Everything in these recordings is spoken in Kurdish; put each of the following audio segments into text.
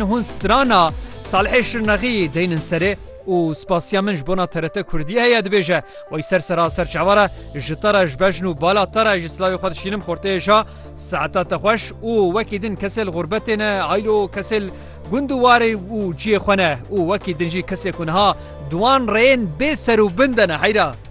Hûn strana Salihê Şirnexî deynin serê û spasiya min ji bona TRT Kurdî heye dibêje, Wey ser ser a ser çawa re ji te re ji bejn û bala te re jî silavê xwe dişînim xorteyê ja saeta te xweş û wekî din kesê li xûrbetê ne aylo kesê li gund û warê û ciyê xwe ne û wekî din jî kesê ku niha di wan rêyên bê ser û bin de ne heyra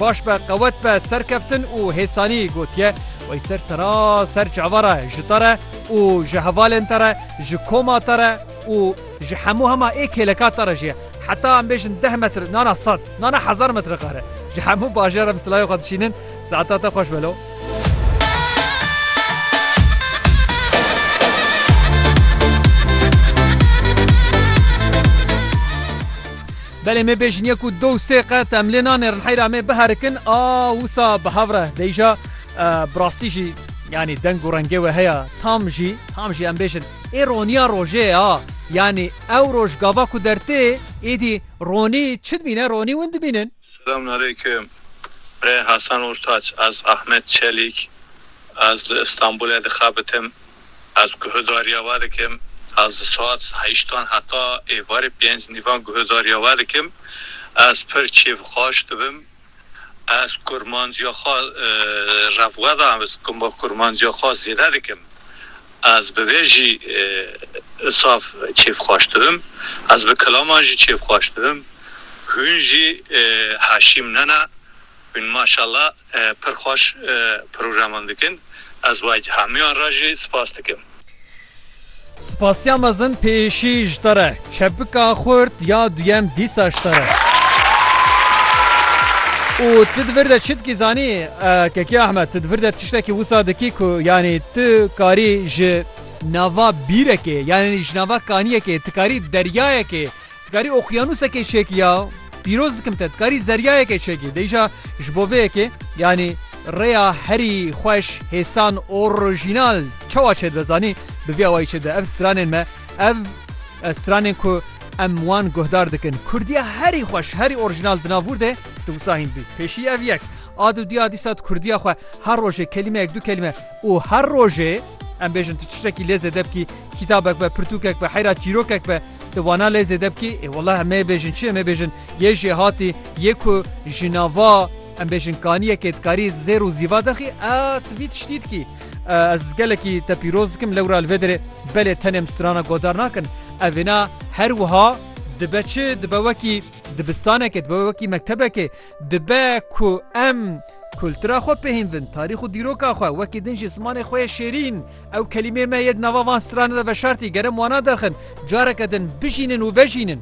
Baş be qewet be serkeftin û hêsanî gotiye wey ser seraser cava re ji te re û ji hevalên te re ji koma te re û ji hemû hema ê kêleka te re jî heta em bêjin deh metr nana sed nana hezar metr qere ji hemû bajar em silayê xwe dişînin saeta te xweş be lo. Belê me bêjiniye ku du û sê qet em lê nanêrin heyra me biherikin a wisa bi hev re deyja bi rastî jî yanî deng û rengê we heye tam jî tam jî em bêjin ê roniya rojê ye a yanî ew roj gava ku dertê êdî ronî çi dibîne ronî win dibînin. Selamun Aleyküm Rê Hasan Urtaç Ez Ahmet Çelîk Ez li Îstanbulê dixebitim. Ez guhdarîya we dikim, ez li saet heştan heta êvarê pênc nîvan guhdarîya we dikim, ez pir kêfxweş dibim, ez kurmancîya xwe revweda ez kurmancîya xwe zêde dikim, ez bi vê jî saf kêfxweş dibim, ez bi kilaman jî kêfxweş dibim, hûn jî heşîm nene, hûn maşalla. Pir xweş programan dikin. Ez we hemûyan re jî spas dikim. Spasiya mezin pêşî ji te re. Çepika xurt ya duyem dîsa ji te re. Û tu di vir de çi dikî zanî Kekî Ahmed tu di vir de tiştekî wisa dikî ku yanî tu karî ji nava bîrekê yanî ji nava kaniyekê tu karî deryayekê Dikarî oqyanusekê çêkî ya? Pîroz dikim te, dikarî zeryayekê çêkî? Dê îşa ji bo vê yekê, yanî rêya herî xweş, hêsan, orojînal çawa çêdibe zanî? Bi vî awayî çêdibe, ev stranên me, ev stranên ku em wan guhdar dikin. Kurdiya herî xweş, herî orojînal di nav wirdê di wisa hîn dibî. Pêşî ev yek. A du dîya dîsa di kurdiya xwe her rojê kelîmeyek, du kelîme û her rojê em bêjin tu çiştekî lê zêde bikî, kîtabek be, pirtûkek be, heyra çîrokek be, Di wana lê zêde bikî, ê wela em nê bêjin çi, em ê bêjin yê jê hatî, yê ku ji nava em bêjin kaniyekê dikarî zêr û zîva derxî, a tu vî tiştî dikî. Ez gelekî te pîroz dikim lewra li vê derê, belê tenê em strana godar nakin. Evêna her wiha dibe çi, dibe wekî dibistanekê, dibe wekî mektebekê, dibe ku em kultura xwe pê hîn bin, tarîx û dîroka xwe, wekî din jî zimanê xwe yê şêrîn, Ew kelîmeyê me yê di nava van strana de veşartî, gerem wana derxin, careke din, bijînin û vejînin.